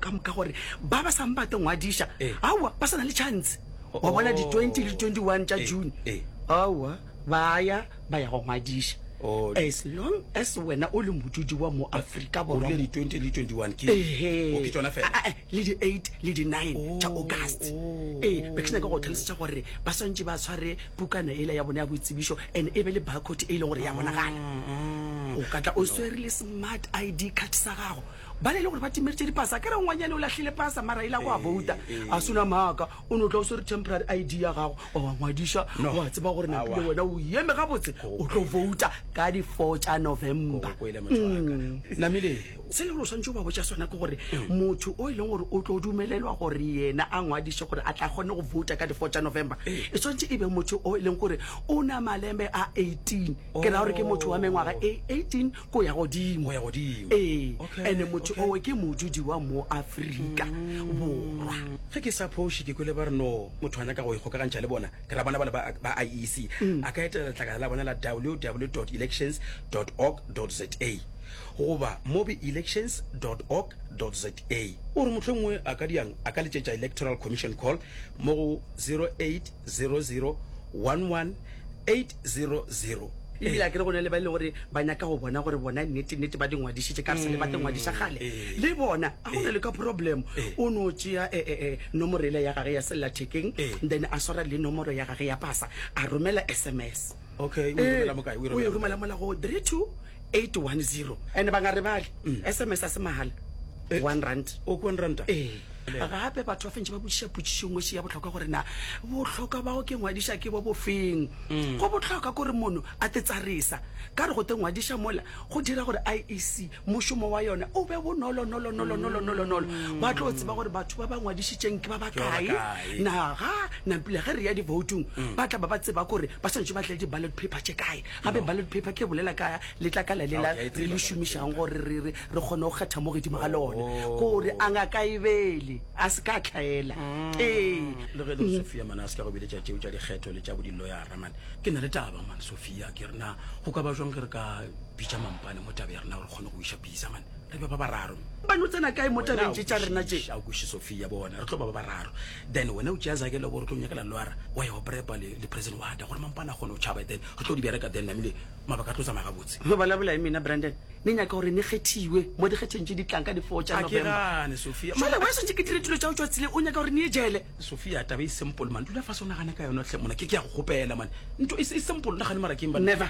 ka moka gore ba ba sa mbate ngwadiša aowa ba sa na le chance wa bona di-20 le di-21 tša june aowa ba ya ba ya go ngwadiša as long as wena o le modudi wa mo aforika borwa le di-20 le 21 ke ke tsona fela Ah, eh, le di-8 le di-9 tša august ee be ke nyaka go tlhalosetša gore ba swantše ba tshware pukana ela ya bona ya boitsebišo and e be le barcode e leng gore ya bonagala o ka tla o swere le smart id card sa gago Bale e le gore ba timeritše dipasa. Akere ngwanyane o lahlile pasa mara e la go a vouta. A suna maaka. O no tla o swere temporary ID ya gago wa wa ngwadiša wa tseba gore napile wena o eme gabotse o tlo vouta ka di four tša November. Namile, se e le gore o swantše o ba botša sona ke gore motho o e leng gore o tlo dumelelwa gore yena a ngwadiše gore a tla kgone go vouta ka di four tša November e swantše e be motho o e leng gore o na malembe a eighteen. Ke ra gore ke motho wa mengwaga e eighteen Go ya godimo. Go ya godimo. Ee, Okay, ene motho okay. owe ke modudi wa mo Afrika Borwa. Ge ke sa phoše ke kwele ba re no motho a nyaka go ikgokagantšha le bona, ke ra bona ba le ba ba IEC a ka etelela letlakala la bona la www elections org za goba mobi elections org za. O re mohlomongwe a ka diang a ka letšetša Electoral Commission Call mo go. 0800 118008. Ebile a ke re go na le ba e le gore ba nyaka go bona gore bona nnete nnete ba di ngwadišitše ka re sele ba te ngwadiša kgale le bona a go na le ka problem o no tšea eh, eh, eh, nomoro ele ya gage ya sellathekeng then a swara le nomoro ya gage ya pasa a romela sms okay o e romela mokae o e romela mola go 32810 and ba nga re bale sms a se mahala 1 eh. rand o oh, 1 rand eh gape batho ba fentse ba botsiša potsišo ngwe se ya botlhokwa gore na botlhokwa bao ke ngwadiša ke bo bofeng mm. go botlhokwa gore mono a te tsarisa ka re go te ngwadiša mola go dira gore IEC mošomo wa yona o be bonolonolonolonolonolonolonolo. Ba tlo tseba gore batho ba ba ngwadišitšeng ke ba ba kae. Naga, nampile ge re ya divoutong, ba tla ba ba tseba gore ba swanetše ba tle le di-ballot paper tše kae. Gape ballot paper ke e bolela ka letlakala lela re le šomišago gore re re re kgone go kgetha mo godimo ga lona. Ko re a Ngaka Ebele a se ka a hlaela. Ee. Le ge e le gore Sophia mane a se ka go biletša tšeo tša dikgetho le tša bodiloyara mane, ke na le taba mane Sophia. Pia, ke re na go ka ba jwang ge re ka bitša mampane mo tabe ya rena gore kgone go iša pisa mane re be ba bararo ba no tsena kae mo tabeng tše tša rena tše a kweše sofia bona re tlo ba ba bararo then wena o tšea zake le gore tlo nyakela loara wa ya go prepa le, le president wata gore mampane a kgone go tšhaba then re tlo di bereka then namile mabaka a tlo tsamaya gabotse go balabola e mena brandon ne nyaka gore ne kgethiwe mo dikgetheng tše di tlang ka di-four tša november sofia mala wa setse ke dire dilo tšao tšwa tsile o nyaka gore ne e jele Sofia taba e simple man dula fase o nagane ka yona hle mona ke ke ya go kgopela man nto e simple nagane mara ke never